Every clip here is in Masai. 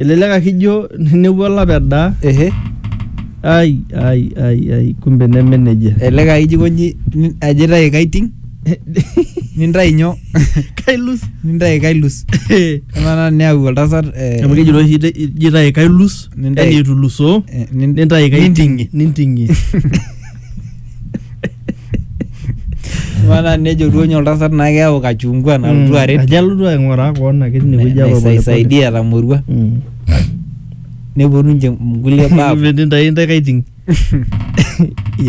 Elelek ake ijo nepuo olapa edaa. Ehe. Ai ai ai ai kumbe neme nejia. Elelek aa ijo aikoji ajo aitayu kaiting nintayu nyoo? Kailus. Nintayu kailus. Amaa naa neyau oltasat eh, Amu kejito oshi ita- ijo aitayu kailus Nintayu- yani etulusoo eh, nin- nintayu kaiting'ie ninting'ie. ninting'ie. Maana nejo duo nye oltasat naa keyau kachungwa nalotu aret Ajo alotu aing'uraa koon ake tine wueji apa polepole. naisaidia etamorua Mm. neponu ninche nkulie baa Metii ntae intae kaiting.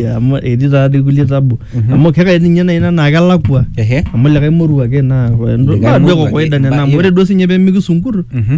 Ya, amu etii taa dii kulie tabu. Mhm. Amu kekai ninye nai ina naa kelakua. Ehe. Amu likae moruo ake naa Likae naa duo moruo ake, kawaida nena amu iba- ore duo sinye pee mikisunkur Mhm.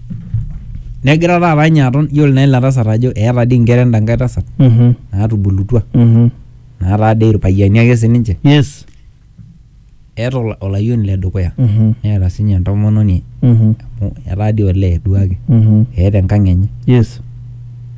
negira taata ninye aton yiolo naa ina tasat ajo eeta dii inkera enda nkae tasat Mhm. naatubulutua Mhm. naataa dii irpayiani ake sininche Yes. eeta ola- olayioni le dukuya Mhm. neeta sinye entomononi Mhm. amu etaa dii olee duake Mhm. eeta enkang enye Yes.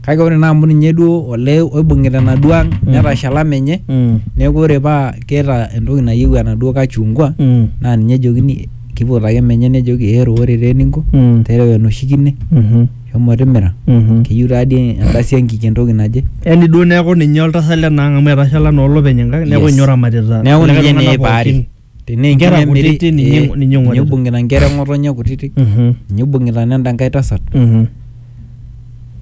kake ore naa amu ninye duo olee oibung'ita enaduo ang netashala menye Mm. neeku ore paa keeta entoki nayieu enaduo kachungwa Mm. naa ninye ejokini Keipotu ake menye nejoki ero ore taa eninko Mm. tereu enoshi kine Mhm. shomo timira Mhm. keyieu taa dii endasi enkik entoki naje. Yaani duo neeku ninye oltasat lena ang' amu etashala naa olopeny enkang' neeku Yes. ninye oramatita Neeku kulikae ninye tung'anak neipaari. pookin. Tenaa Inkera enkine emiri kutiti ninye- eh, ninye ninye ing'orita. oibung'ita inkera eng'otonye kutiti Mhm. ninye oibung'ita nenda nkae tasat. Mhm.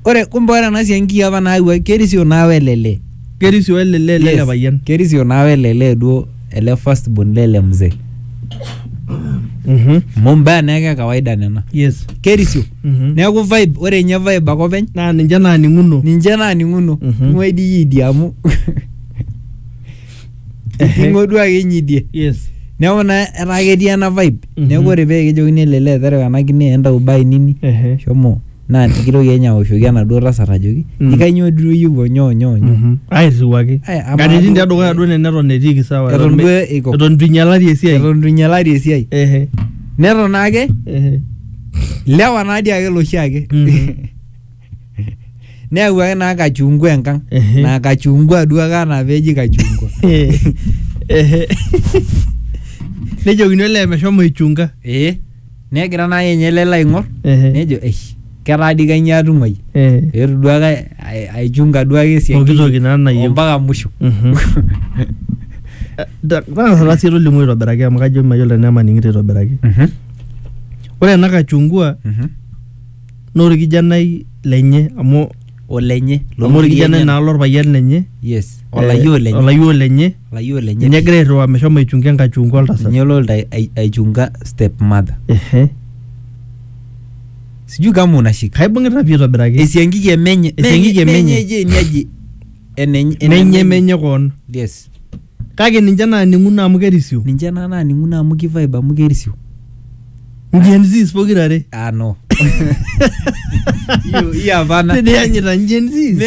Ore kumbe ore ena siai nkiyia apa naawua kerisio naa welele. Kerisio ele lee lele Yes, payian. kerisio naa welele duo ele first born lele mzee. Mhm. Amu mbaa naa ake e kawaida nena. Yes. Kerisio. Mhm. Neeku vibe ore ninye vibe ake openy Naa ninche naaning'uno. ninche naaning'uno. Mhm. Ing'ua idia o idia amu Ehe. ing'o duo ake inyidie yes neeku naa etaa ketii ena vibe Mhm. neeku ore pee kijokini ele lee terewa ena kine entau bae nini Ehe. shomo naa nikitoki enye aoshoki enaduo tasat ajoki Mm. ikainyoo duo iyieu onyoo onyoo onyoo Mhm. airriwaki Ai, amaa katitin duo- tedukuya duo nena eton etiiki sawa eton me- duo eiko eton itu inyalari esiai eton itu inyalari esiai Ehe. neton ake Ehe. lewa naadii ake loshi ake Mhm. neyawuaki naa kachungwa enkang Ehe. naa kachungwa duo ake anaa peji kachungwa Ehe. nejokini olee meshomo aichunga ee negira naa yenye lelo aing'or Ehe. nejo eish ketaa dii kainyoo atung'uai Eh. etu duake ai- aichunga duake esiai Pooki toki naa nayieu. ompaka musho Mhm. Ta- tang'asa sii tolimu aitobiraki amu kajo mayiolo tenaa emaning'ito aitobiraki Mhm, ore ena kachungua mhm. naa orkijanai lenye amu olenye amu orkijanai naa lorpayian lenye yes eh, olayioo lenye olayioo lenye olayioo lenye ninye egira airriwaa meshomo aichunga enkachunga oltasat ninye lolta ai- aichunga step mother ehe sijui kama unashika kaibung'ita pii aitobiraki esiankiki emenye Esiankiki emenye. eje niaji enenye menye menye koon yes Kake ninche naaning'uno amu kerisio. Ninche naa naaning'uno amu ki vibe amu kerisio. Gen Zs pokira are. Ah no. Hiyo hiyo hapana. Tenianyita Gen Zs.